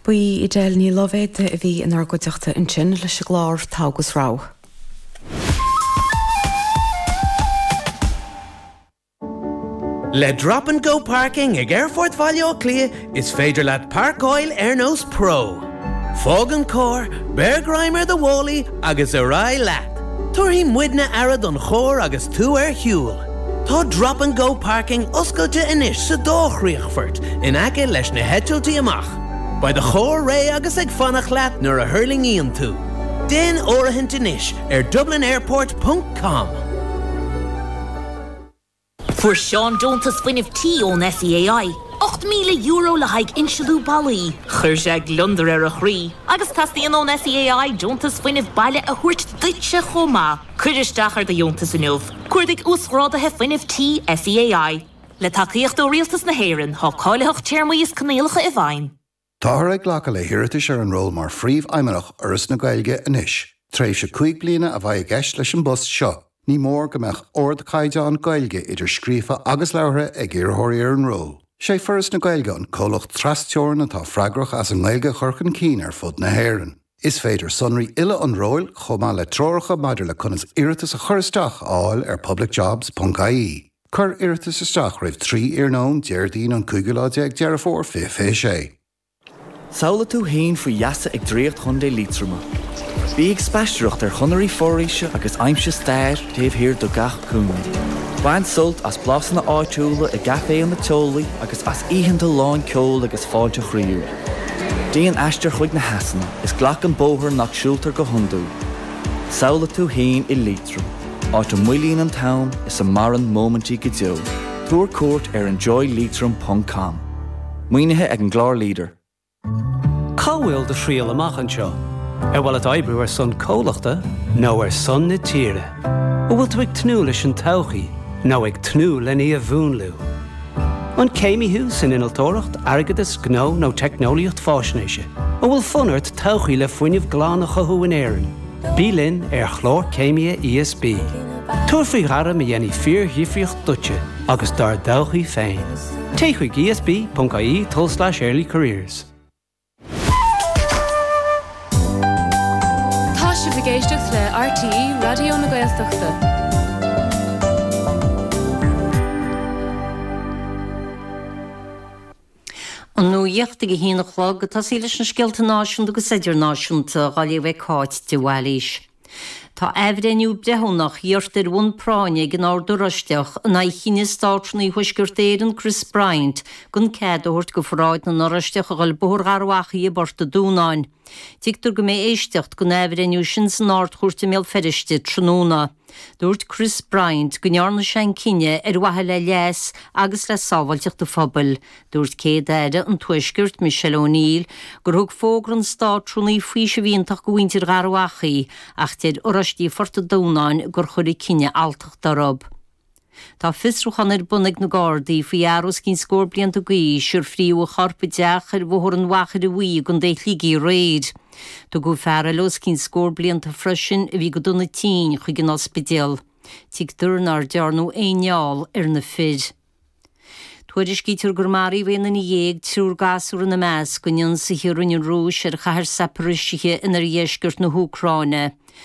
Ba í Edel Ní Loibhéide a bhí inár gcuideachta ansin leis an gclár Togha agus Rogha. Le Drop and Go Parking ag Aerfort Bhaile Átha Cliath is féidir leat páirceáil ar nós pro. Fág an carr, beir greim ar do mhálaí agus ar aghaidh leat. Tabharfaidh muidne aire don charr agus tú ar shiúl. Tá 'Drop and Go Parking' oscailte anois sa dá chríochfort in aice leis na heitiltí amach. Beidh do charr réidh agus ag fanacht leat nuair a thuirlingíonn tú. Déan áirithint anois ar dublinairport ponc com. Fuair Seán deontas fuinnimh tí ón SEAI, €8,000 le haghaidh insealú ballaí. Chuir sé gliondar ar a chroí agus teastaíonn ón SEAI deontas fuinnimh baile a thabhairt duitse chomh maith. Cuir isteach ar do dheontas inniu, cuardaigh Uasghráduithe Fuinnimh Tí SEAI. Le tacaíocht ó Rialtas na hÉireann, tá cáilitheacht téarmaí is coinníollacha i bhfeidhm. Táthar ag glacadh le hiarratais ar an ról mar Phríomhfheidhmeannach Fhoras na Gaeilge anois. Tréimhse cúig bliana a bheidh i gceist leis an bpost seo. Ní mór go mbeadh ardchaighdeán Gaeilge, idir scríofa agus labhartha, ag iarrthóirí ar an ról. Is é Foras na Gaeilge an comhlacht tras-teorann atá freagrach as an nGaeilge a chur chun cinn ar fud na hÉireann. Is féidir sonraí uile an róil, chomh maith le treoracha maidir le conas iarratas a chur isteach, a fháil ar publicjobs ponc ie. Cuir iarratas isteach roimh 3 iarnóin Déardaoin an cúigiú lá déag Deireadh Fómhair 2026. Samhlaigh tú fhéin faoi gheasa ag Draíocht Chontae Liatroma. Bí ag spaistearacht ar chonairí foraoise agus aimsigh stair taobh thiar de gach cúinne. Bain sult as blasanna áitiúla i gcaiféanna teolaí agus as oícheanta lán ceoil agus fáilte chroíúil. Déan aistear chuig na heasanna is glac an bóthar nach siúltar go hiondúil. Samhlaigh tú fhéin i Liatroim, áit a moillíonn an t-am is a maireann móimintí go deo. Tabhair cuairt ar enjoyliatroim ponc com. Maoinithe ag an gclár LEADER. Cá bhfuil do thriall amach anseo? Ar mhaith leat oibriú ar son comhlachta nó ar son na tíre? An bhfuil tú ag tnúth leis an todhchaí nó ag tnúth lena í a mhúnlú? An céimí thú san innealtóireacht, airgeadas, gnó nó teicneolaíocht faisnéise? An bhfuil fonn ort todhchaí le fuinneamh glan a chothú in Éirinn? Bí linn ar Chlár Céimithe ESB. Tabhair faoi ghairm a dhéanfaidh fíordhifríocht duitse agus dár dtodhchaí féin. Téigh chuig esb.ie/earlycareers. Tá sibh ag éisteacht le RTÉ Raidió na Gaeltachta. An nuacht ag a haon a chlog, ag tosaí leis na scéalta náisiúnta agus idirnáisiúnta, á léamh ag Cáit de Bhailís. Tá athbhreithniú breithiúnach iarrtha ar bhonn práinne ag an Ord Oráisteach in aghaidh chinneadh Státrúnaí Thuaisceart Éireann Chris Bryant gan cead a thabhairt do Pharáid na nOráisteach a ghoil Bóthar Gharbhachaidh i bPort a' Dúnáin. Tuigtear go mbeidh éisteacht den athbhreithniú sin san Ard-Chúirt i mBéal Feirste tráthnóna. Dúirt Chris Bryant go ndearna sé an cinneadh ar mhaithe le leas agus le sábháilteacht an phobail. Dúirt Céad-Aire an Tuaiscirt, Michelle O'Neill, gur thug fógra an Státrúnaí faoiseamh iontach do mhuintir Gharbhachaidh ach deir Oráistí Phort a' Dúnáin gur chuir an cinneadh alltacht orthu. Tá fiosrúchán ar bun ag na Gardaí faoi fhear os cionn scór blianta d'aois ar frítheadh a chorp i dteach ar Bhóthar an Mhachaire Bhuí i gContae Shligigh aréir. Tugadh fear eile os cionn scór blianta freisin, a bhí go dona tinn, chuig an ospidéal. Tuigtear nár dearnadh aon fheall ar na fir. Tuairiscítear gur maraíodh aon duine dhéag, triúr gasúr ina measc, in ionsaithe a rinne an Rúis ar chathair Zaporizhzhia in oirdheisceart na hÚcráine.